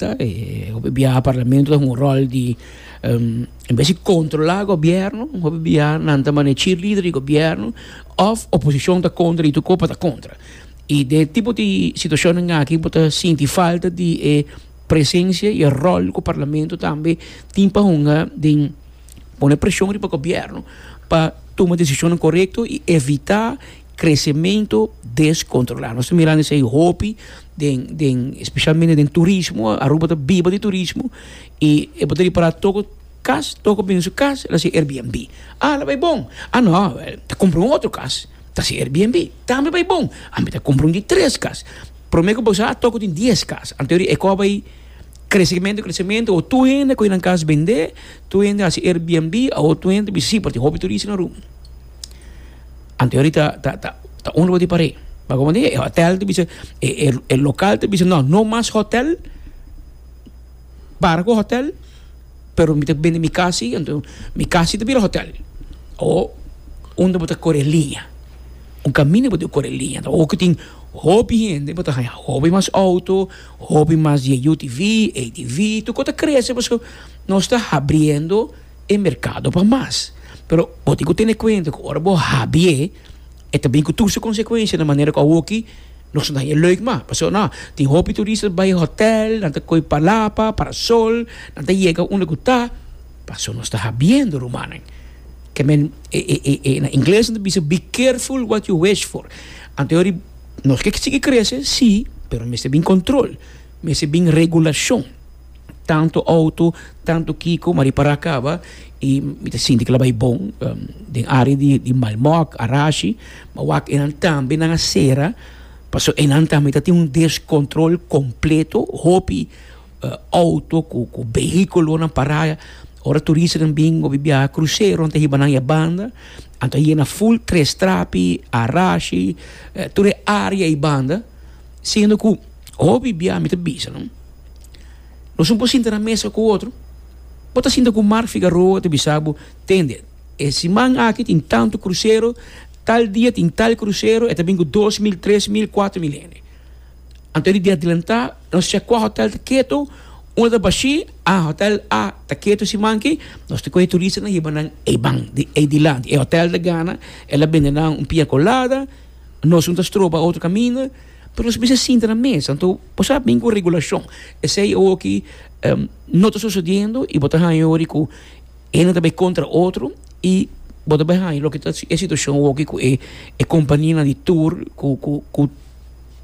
ta e hopi biaha parlamento ta un rol di um, en vez di controla gobierno hopi biaha nan ta mane cheerleader di gobierno of oposición ta contra y tu copa ta contra y de tipo di situación en aki bota sinti falta di e presencia y e rol cu parlamento tambe tin pa hunga den pone presion riba gobierno pa tuma decisiones correcto y evita crecemento descontrolá. Nos ta mirando esei hopi den, den, especialmente den turismo, Aruba ta biba di turismo, y e bo ta repará toco cas, toco bindo su cas, el a hasi Airbnb. Ah, lo bai bon! Ah, no, ta cumpra un otro cas, ta hasi Airbnb. Tambe bai bon! Ami ta cumpra un di tres cas. Prome cu bo sa, toco tin dies cas. Anto e ecò bai crecemento, crecemento, awo tur hende a coge nan cas bende, tur hende a hasi Airbnb, awo tur hende ta bisa si, pasobra tin hopi turista na Aruba. Anto yori ta ta ta ta un luga di par'é. Pero komo e hotel ta bisa e e e lokal ta bisa no no mas hotel para ku hotel pero mi ta bende mi kasi anto mi kasi ta bira hotel o unda bo ta kore liña un kaminda bo ta kore liña o ku tin hopi hende bo ta haña hopi mas outo hopi mas di e yu ti vi ei ti vi tu ko ta krese paske nos ta habriendo. e merkado pa mas. Pero bo tin ku tene kuenta ku ora bo habi'é e ta bin ku tur su konsekuensia na manera ku awoki no so nadie lùik mas. Pasobra nau tin hopi turistas bai hotèl, nan ta kohe palapa, parasol, nan ta yega unda ku ta, paso nos ta habiendo rumannan. Ke men e e e e na ingles nan ta bisa be careful what you wish for. Anto yori nos ke sigui krese, sí, pero mester bin kontrol, mester bin regulashon. Tanto auto, tanto kiko, ma ripará kaba i mi ta sinti ke lo bai bon. Den área di, di Malmok, Arashi, ma wak enan tambe nan a sera pasobra enan tambe ta tin un deskontrol kompleto. Hopi auto ku, ku behikulonan pará ora turistanan bin hopi biaha kruseronan ta hiba nan e banda. Anto a yena ful tres trapi, Arashi, tur e área ei banda. Siendo cu hopi bia mi ta bisalo, nos un por sinta na mesa cu otro, bo ta sinta cu Mark Figaroa ta bisa bo, Tende, e siman aki tin tanto crucero, tal dia tin tal crucero, e ta bin cu dos mil, tres mil, cuatro mil hende. Anto di adelanta, nos check cua hotel ta keto, unda ta bashi, ah, hotel A ta keto siman aki, nos ta coge turista na hiba nan eibanan di eidilanti. E hotel ta gana, el a bende nan un pina colada. Nos no ta stroba otro caminda, pero nos bisa sinta na mesa. Anto, bo sa bin cu un regulacion. Esey awoki no ta sucediendo y bo ta haya yori cu ene ta bay contra otro y bo ta bay haya loke ta e situacion awoki cu e companianan di tur cu, cu, cu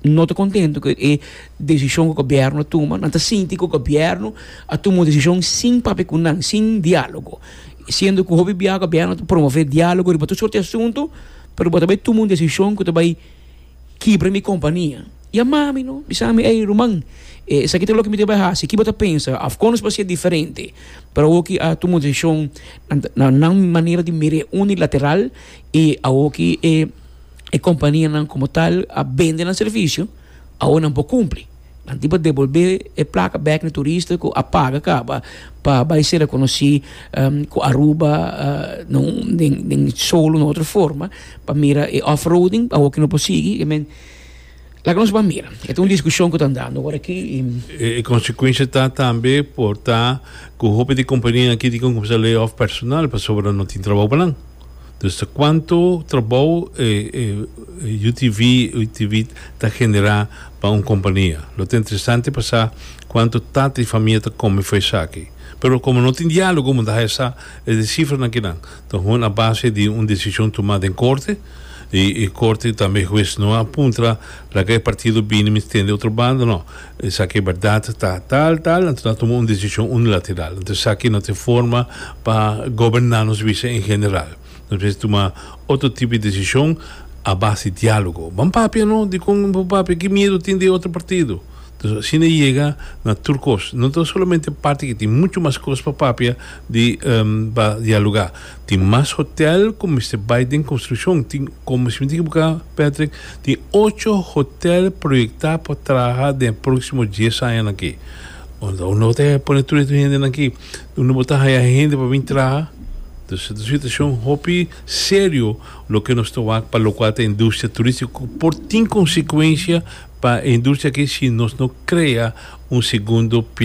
no ta contento cu e decision cu gobierno a tuma. Nan ta sinti cu gobierno a tuma un decision sin papia cu nan, sin dialogo. Siendo cu hopi bia gobierno ta promove dialogo riba tur sorti asunto. Pero bo ta bay tuma un decision cu ta bay kibra mi compania. Yama mi no, bisa mi, ey ruman, e esaki ta loke mi ta bay haci. Ki bo ta pensa? Of con nos por haci diferente? Pero awo ki a tuma un decision na nan manera di mira e unilateral y awo ki e companianan como tal a bende nan servicio, awo nan por cumpli. Anti bo debolbé e plaka bèk na e turista ku a paga kaba pa bai sera konosí ku Aruba den solo na otro forma pa mira e off-roading awor ku no por sigui i men laga nos bai mira. E ta un diskushon ku ta andando awor aki i. E konsekuensia ta tambe por ta ku hopi di kompania aki tin ke kumsa lay off personal pasobra no tin trabou pa nan. Dus ta cuanto trabao e UTV UTV ta genera pa un compania. Lo ta interesante pa sa cuanto tata y famia ta come for esaki. Pero como no tin dialogo munda haja sa e de cifranan kinan ta hoon a base di un decision tuma den corte y y corte tambe hues no a puntra laga e partido bini mi stende otro banda no. Esaki e berdad ta tal tal, anto nan tuma un decision unilateral, anto esaki no tin forma pa goberna nos bisa en general. Nos mester tuma otro tipo di decision a base di dialogo. Ban papia no di con bo papia, ki miedo tin di e otro partido? Entonces asina e yega na tur cos. No ta solamente parti ki tin mucho mas cos pa papia di pa dialoga. Tin mas hotel cu mester bay den construccion. Tin, como si mi ta equiboca, Patrick, tin ocho hotel proyecta pa traha den e proximo dies añanan aki. Unda un lo ta pone tur e hendenan aki? Unda bo ta haya hende pa bin traha? Dus, e ta un situacion hopi serio loke nos ta wak pa locual ta industria turistico cu por tin consecuencia pa e industria aki si nos no crea un segundo pilar.